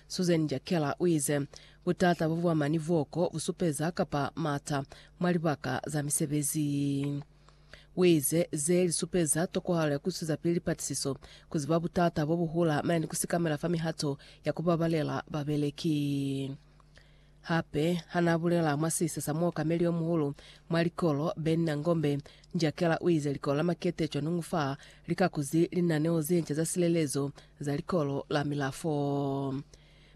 Susan Jakela uize, Butata bo buama ni vuoko bu supeza kapa mata mwa libaka za misebezi yi. Uize, Ze li supeza tokohalo ya kuisuza pili lipatisiso, kuziba butata bo buhula mane ni kusikamela fa mihato ya kubabalela babeleki. Hape ha n'a bulela mwa sisa sa muokameli yo muhulu mwa likolo, Ben Nangombe, Njakela u ize likolo la Makete cwanungu fa li ka kuzi linaneo ze nca za silelezo za likolo la Milafo.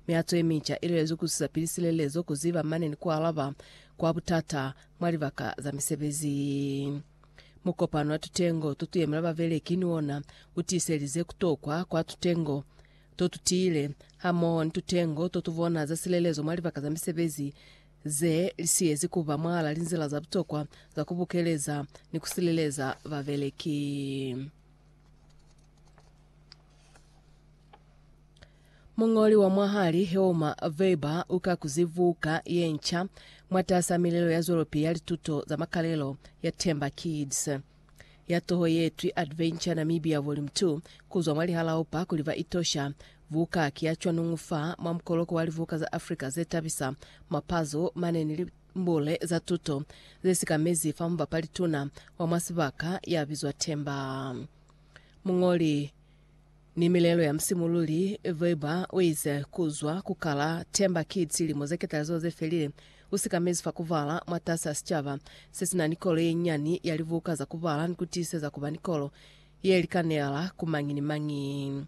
Mihato ye minca i lwelezwi ku susa pili silelezo, ku ziba mane ni ku alaba kwa butata mwa libaka za misebezi. Mukopano wa tutengo to tu yemela babeleki ni ona u tiiselize ku tokwa kwa tutengo to tu tiile, hamoho ni tutengo to tu bona za silelezo mwa libaka za misebezi ze li siyezi ku ba mwahal'a linzila za butokwa za ku bukeleza ni ku sileleza babeleki. Muñoli wa mwahali Hilma Weber u ka kuzi buka ye nca mwatas'a milelo ya zwelopili ya lituto za makalelo ya Themba Kids. ya toho ye twi Adventure Namibia Volume 2 kuzwa mwa lihalaopa kuli ba itosha. Buka ki ya cwanuñu fa mwa mukoloko wa libuka za Africa ze tabisa, mapazo mane ni limbule za tuto ze sikamezi fa mubapali tuna wa mwa sibaka ya bizwa Themba. Muñoli. Ni milelo ya musimululi, Weber uize, Kuzwa ku kala Themba Kids lilimo ze ketalizo ze felile, u sikamezi fa kubala mwatasi a sicaba se si na ni kolo ye nyani ya libuka za kubala ni ku tiiseza kuba ni kolo ye likaneala ku mañi ni mañi.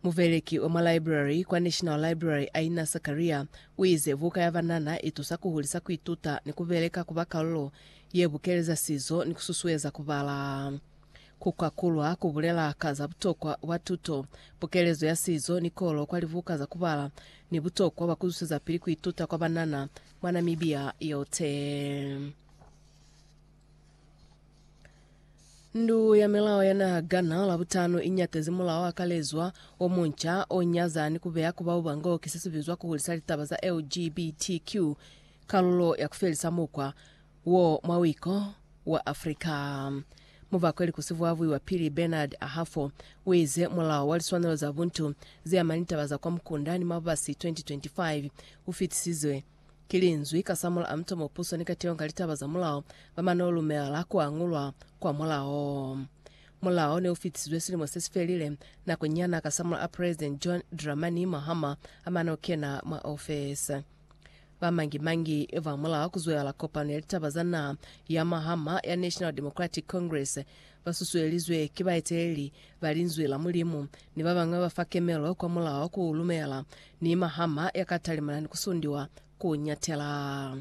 Mubeleki wa mwa library kwa National Library, Aina Sakaria, uize, Buka ya banana itusa kuhulisa kuituta ni kubeleka kuba kalulo ye bukeleza sizo ni kususueza kubala. Ku kakulwa ku bulela ka za butokwa bwa tuto, pukelezo ya sizo ni kolo kwa libuka za ku bala, ni butokwa bwa ku zwezapili ku ituta kwa banana mwa Namibia yote. Ndu ya Milao ya Naha Ghana Labutano i nyatezi mulao wa kalezwa o munca o nyaza ni ku beya ku bauba ngo ki se si bizwa ku hulisa litaba za LGBTQ kalulo ya ku felisa mukwa wo mwa wiko wa Afrika. Mubakweli kusivwavwi wa pili Bernard Ahafo uize mulao wa liswanelo za buntu zeama ni taba za kwa mukunda ni mabubasi 2025 ufitisizwe ki linzwi kasamula a mutomo puso ni kateho ka litaba za mulao bamane ulumela kuangulwa kwa mulao. Mulao neufitisizwe silimo sesifelile, nako nyana kasamula a President John Dramani Mahama amane ukena mwa ofesi. Ba mangi-mangi ba mula ku zwelala kopano ya litaba za naha ya mahama ya National Democratic Congress ba susuelizwe ki baeteleli ba Linzwi la Mulimu ni ba bañwi ba ba fa kemelo kwa mulao ku lumela ni mahama ya ka talimana ni ku sundiwa ku nyatela.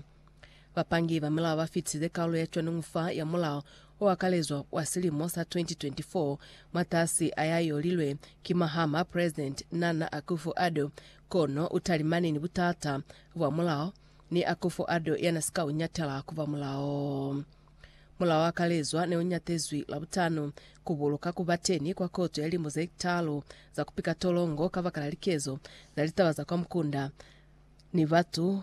Bapangi ba milao ba fitisize kaulo ya cwaningu fa ya mulao o akalezwa wa silimo sa 2024 mwatasi a ya y'o lilwe ki mahama President Nana Akufo-Addo Kono utalimani ni butata bwa mulao, ni Akufo Addo yana si ka u ñatela ku ba mulao. Mulao wa kalezwa ne u ñatezwi Labutanu ku buluka ku ba teni kwa koto ya limo ze talu za ku pika tolongo kabakala likezo za litaba za kwa mukunda ni batu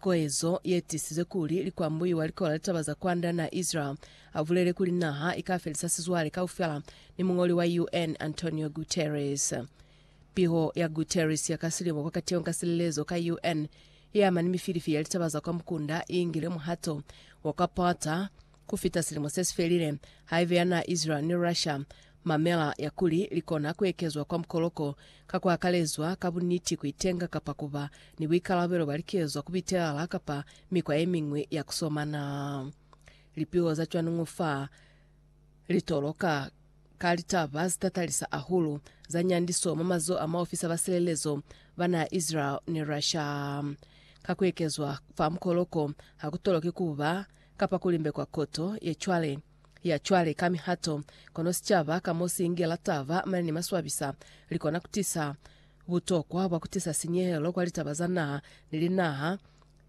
Koezo yetisize kuli likwambuyu wa likola litaba za kwanda na Israel abulele kuli naha ikafelisa sizwale kaufela ni muñoli wa UN Antonio Guterres. Piho ya Guterres ya ka silimo kwa kateho ka silelezo ka UN iama ni mifilifi ya litaba za kwa mukunda iingile muhato wa kwa pata Ku fita silimo se si felile, haibe ya naa Israel ni Russia, mamela ya kuli li kona ku ekezwa kwa mukoloko, ka ku akalezwa ka buniti ku itenga kapa ku ba ni buikalabelo bwa likezwa ku bitelala kapa mikwa ye miñwi ya ku somana. Lipiho za cwani ño fa li toloka ka litaba ze tatalisa ahulu za nyandiso mwa mazoho a maofisa ba silelezo ba naa Israel ni Russia. Ka ku ekezwa fa mukoloko, ha ku toloki ku ba kapa ku limbekwa koto ye cwale, ya cwale ka mihato, kono sicaba ka mo si ingela taba mane ni maswabisa, li kona ku tisa butokwa bwa ku tisa sinyehelo kwa litaba za naha ni linaha,